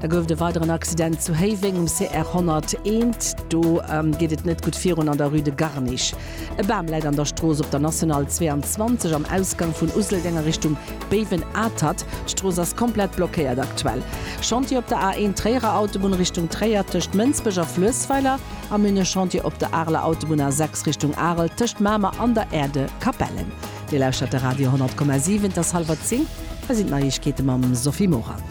Da gouf et e weideren Accident zu Héiweng um CR 101. Do geet et net gutt virun an der Rue de Garnich. E Bam läit an der Strooss op der National 22 am Ausgang vun Useldeng a Richtung Béiwen-Atert. D'Strooss ass komplett blockéiert aktuell. Chantier op der A1 Tréierer Autobunn Richtung Tréier tëscht Mënsbech a Fluessweiler a mir hunn e Chantier op der Areler Autobunn A6 Richtung Arel tëscht Mamer an der Aire de Capellen. Dir lauschtert de Radio 10,7, et ass hallwer 10, hei sinn d'Neiegkeete mam Sophie Morang.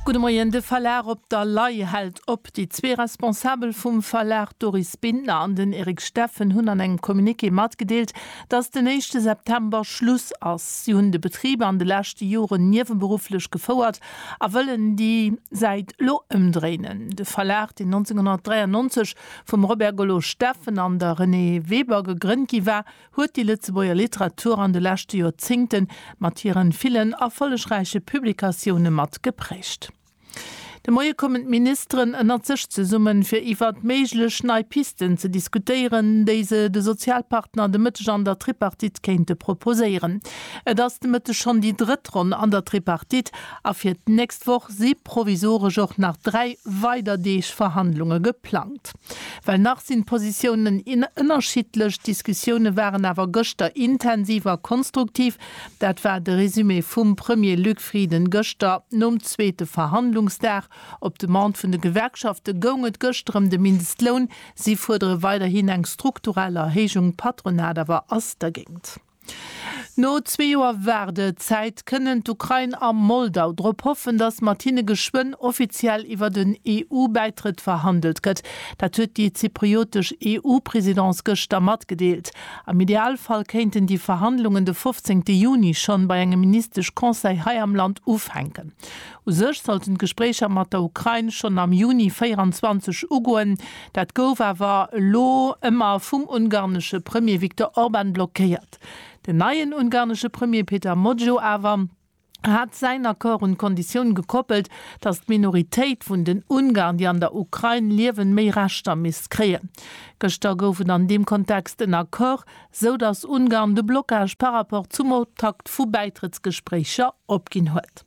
Gudde Moien, De Verlag Op der Lay hält op. Déi zwee Responsabel vum Verlag, d'Doris Bintner an den Eric Steffen, hunn an engem Communiqué matgedeelt, datt den éischte September Schluss ass. Si hunn de Betrib an de leschte Joren nieweberufflech gefouert a wëllen déi Säit elo ëmdréinen. De Verlag, deen 1993 Vum Robert Golo Steffen an der Renée Weber gegrënnt gi war, huet déi Lëtzebuerger Literatur an de leschte Joerzéngte mat hiren villen erfollegräiche Publikatioune mat geprägt. De Moie kommen d'Ministeren ënnert sech zesummen, fir iwwert méiglech nei Pisten ze diskutéieren, déi se de Sozialpartner de Mëtteg an der Tripartite kéinte proposéieren. Et ass de Mëtteg schonn déi drëtt Ronn an der Tripartite A fir d'nächst Woch si provisoresch och nach dräi weider Deeg Verhandlunge geplangt. Well nach sinn d'Positiounen ënnerschiddlech, d'Diskussioune waren awer gëschter intensiv a konstruktiv. Dat war de Resumé vum Premier Luc Frieden gëschter nom zweete Verhandlungsdag. Op Demande vun de Gewerkschafte goung et gëschter ëm de Mindestloun. Si fuerdere weiderhin eng strukturell Erhéijung, d'Patronat awer ass dergéint. No zwee Joer Waardezäit kënnen d'Ukrain a Moldau drop hoffen, datt mat hinne geschwënn offiziell iwwert en EU-Bäitrëtt verhandelt gëtt. Dat huet déi zypriotesch EU-Presidence gëschter matgedeelt. Am Idealfall kéinten déi Verhandlungen de 15 Juni schonn bei engem Ministesch-Conseil hei am Land ufänken. U sech sollten d'Gespréicher mat der Ukrain schonn am Juni 24 ugoen. Dat gouf awer elo ëmmer vum ungarnesche Premier Viktor Orban blockéiert. Den neien ungarnesche Premier Peter Mozio awer hat säin Accord un d'Konditioun gekoppelt, datt d'Minoritéit vun den Ungarn, déi an der Ukrain liewen, méi Rechter misst kréien. Gëschter gouf et an deem Kontext en Accord, sou datt Ungarn de Blockage par rapport zum Optakt vu Bäitrëttsgespréicher opginn huet.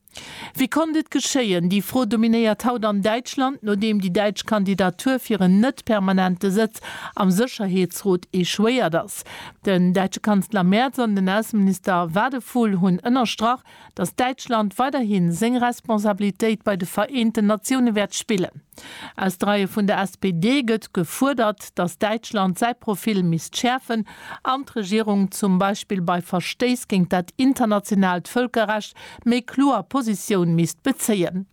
Wéi konnt et geschéien? Déi Fro dominéiert haut an Däitschland, nodeem déi däitsch Kandidatur fir en net-permanente Sëtz am Sécherheetsrot echouéiert ass. Den däitsche Kanzler Merz an den Ausseminister Wadephul hunn ënnerstrach, datt Däitschland weiderhi seng Responsabilitéit bei de Vereenten Natioune wäert spillen. Aus de Reie vun der SPD gëtt gefuerdert, datt Däitschland säi Profil misst schäerfen an d'Regierung zum Beispill bei Verstéiss géint dat internationaalt Vëlkerrecht méi kloer Positioun misst bezéien.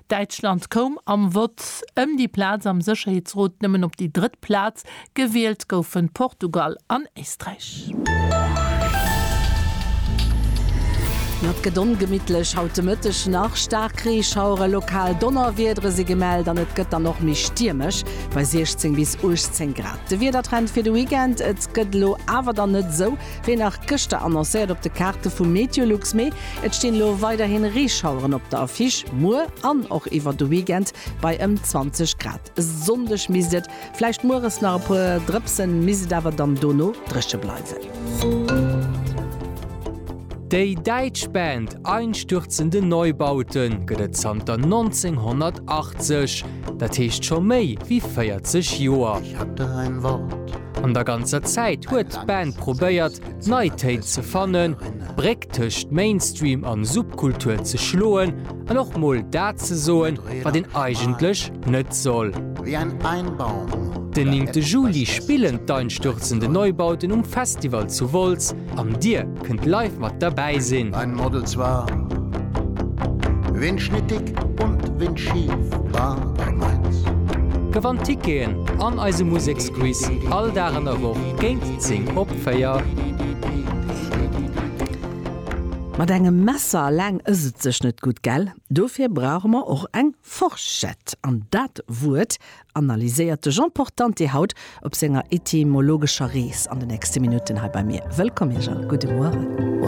Däitschland koum am Vott ëm déi Plaz am Sécherheetsrot nëmmen op déi drëtt Plaz, gewielt goufen Portugal an Éisträich. Mat gëtt ongemittlech haut de Mëtteg nach, staark Reeschauere, lokal Donnerwiedere si gemellt an et gëtt dann och méi stiermesch bei 16 bis 18 Grad. De Wiedertrend fir de Weekend, Et gëtt elo awer dann net esou Wéi nach gëschter annoncéiert op de Kaarte vu Meteolux, mee et stinn elo weiderhin Reeschaueren op der Affiche. Muer an och iwwer de Weekend bei ëm 20 Grad. E Sonndeg misst et vläicht mueres nach e puer drëpsen, misst et awer dann dono dréche bleiwen. Déi däitsch Band Einstürzende Neubauten gëtt et zanter 1980, dat heescht scho méi wéi 40 Joer. An der ganzer Zäit huet d'Band probéiert, nei Téin ze fannen, d'Bréck tëscht Mainstream an Subkultur ze schloen an och mol dat ze soen, wat een eigentlech net soll. Den néngte Juli spillen d'Einstürzende Neubauten um Festival zu Wolz. An dir? kënnt live mat derbäi sinn. Ein Models war windschnittig und windschief war bei Mainz. Gewannt Ticketen an eise Museksquiz all Dag an der Woch géint 10 op 4. Mat engem Messer alleng ëss et sech net gutt, gell? Dofir brauche mer och eng Forschett. An dat Wuert analyséiert de Jean Portante haut op senger etymologescher Rees an de nächste Minutten hei bei mir. Wëllkomm Ierch a gudde Mueren.